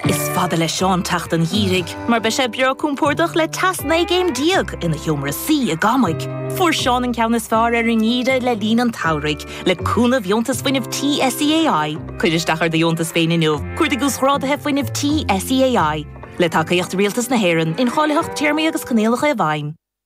Is fada le Seán teacht an gheimhridh mar beidh sé breá compordach le teas 19 gcéim ina sheomra suí i gCamaigh. Fuair Seán an ceann is fearr ar an ngeimhreadh le linn an tsamhraidh le cúnamh dheontas fuinnimh tí SEAI. Cuir isteach ar do dheontas féin inniu. Cuardaigh uasghráduithe fuinnimh tí SEAI, le tacaíocht Rialtas na hÉireann, incháilitheacht téarmaí agus coinníollacha i bhfeidhm.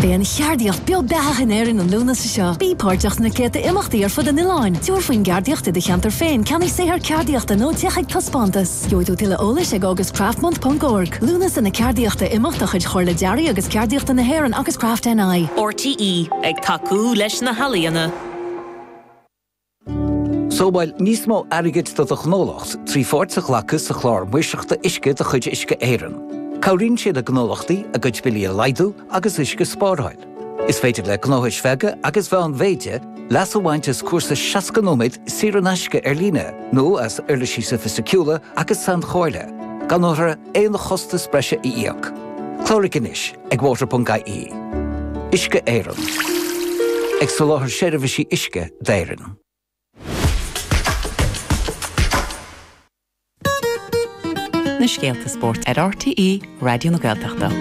Beidh an cheardaíocht beo beathach in Éirinn an Lúnasa seo. Bí páirteach sna céadta imeachtaí ar fud an oileáin. Tabhair faoin gceardaíocht i do cheantar féin, ceannaigh saothar ceardaíochta nó téigh chuig taispeántas. Gheobhaidh tú tuilleadh eolais ag augustcraftmonth.org. Lúnasa na Ceardaíochta, imeacht de chuid Chomhairle Dearaidh agus Ceardaíochta na hÉireann agus Craft NI. RTÉ, ag tacú leis na healaíona. Sábháil níos mó airgid do do ghnólacht trí pháirt a ghlacadh sa Chlár Maoirseachta Uisce de chuid Uisce Éireann. Cabhraíonn sé le gnólachtaí a gcuid billí a laghdú agus uisce a spáráil. Is féidir le gnóthais bheaga agus mheánmhéide leas a bhaint as cúrsa 60 nóiméad saor in aisce ar líne nó as uirlisí sofaisticiúla agus sainchomhairle, gan orthu aon chostas breise a íoc. Cláraigh anois ag water.ie, Uisce Éireann, ag soláthar seirbhísí uisce d'Éirinn. na scéalta spóirt ar RTÉ Raidió na Gaeltachta.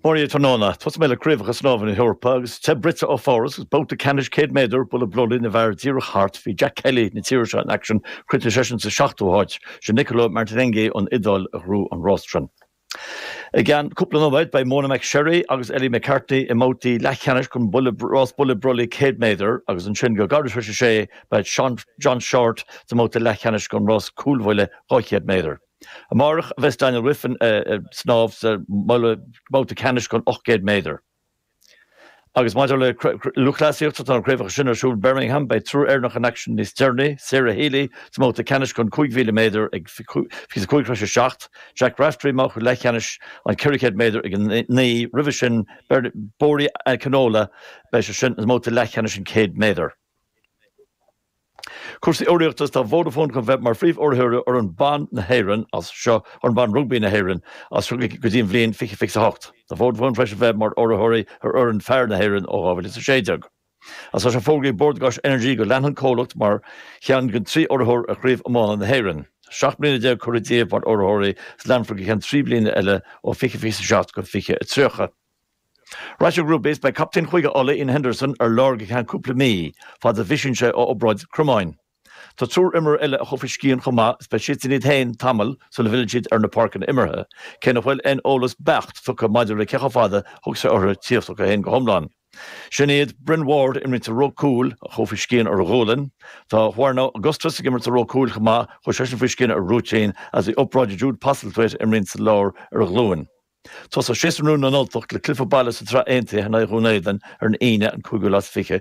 Máiria, Tráthnóna, tosóidh mé le Craobhacha Snámha na hEorpa agus te bruite ó Pháras agus babhta ceannais 100 méadar buille brollaigh na bhfear díreach thart. Bhí Jack Kelly na tíre seo in aicsean, chríochnaigh seisean sa seachtú háit. Sé Nicolo Martinenghi ón Iodáil a ghnóthaigh an rás sin. I gceann cúpla nóiméad beidh Mona McSharry agus Ellie McCartney i mbabhtaí leathcheannais don rás buille brollaigh 100 méadar agus ansin go gairid tar éis a sé beidh John Shortt sa mbabhta leathcheannais don rás cúlbhuille 200 méadar. Amárach a bheas Daniel Wiffen ag snámh sa mbabhta ceannais den 800 méadar. Agus maidir le lúthchleasaíocht, tá na craobhacha sin ar siúl i mBirmingham, beidh triúr Éireannach in aicsean níos deireanaí, Sarah Healy sa mbabhta ceannais den 5,000 méadar ag 25 tar éis a 7, Jack Raftery i mbabhta leathcheannais an 400 méadar ag 9:00, roimhe sin Bori Akinola, beidh seisean sa mbabhta leathcheannais den 100 méadar. Cúrsaí urraíochta, tá Vodafone chun bheith mar phríomhurraitheoir fhoireann ban na hÉireann as seo fhoireann ban rugbaí na hÉireann as seo go dtí an bhliain 2028. Tá Vodafone tar éis a bheith mar urraitheoirí ar fhoireann fear na hÉireann ó 2016. Is tá sé fógraithe ag Bord Gáis Energy go leanfaidh an comhlacht mar cheann den trí urraitheoir ar Chraobh Iomána na hÉireann. Seacht mbliana déag curtha díobh mar urraitheoirí is leanfar go ceann trí bliana eile ó 2027 go 2030. Rugbaí is beidh captaen Chúige Uladh Iain Henderson ar lár go ceann cúpla mí, fad a bhisíonn sé ó obráid cromáin. Tá triúr imreoir eile a chuaigh faoi scian chomh maith is beidh siadsan iad féin tamall sula bhfilleann siad ar na páirceanna imeartha, cé nach bhfuil aon eolas beacht tugtha maidir le cé chomh fada a thógfas sé orthu tíocht chucu féin go hiomlán. Sin iad Bryn Ward, a imríonn sa ró cúil, a chuaigh faoi scian ar a ghualainn. Tá Juarno Augustus ag imirt sa ró cúil chomh maith, chuaigh seisean faoi scian ar rúitín is bhí obráid ag Jude Postlethwaite, a imríonn sa lár, ar a ghlúin. Tosóidh séasúr nua na nUltach le cluiche baile sa tSraith Aontaithe in aghaidh Dhún Éadainn ar an Aoine an 5ú lá is fiche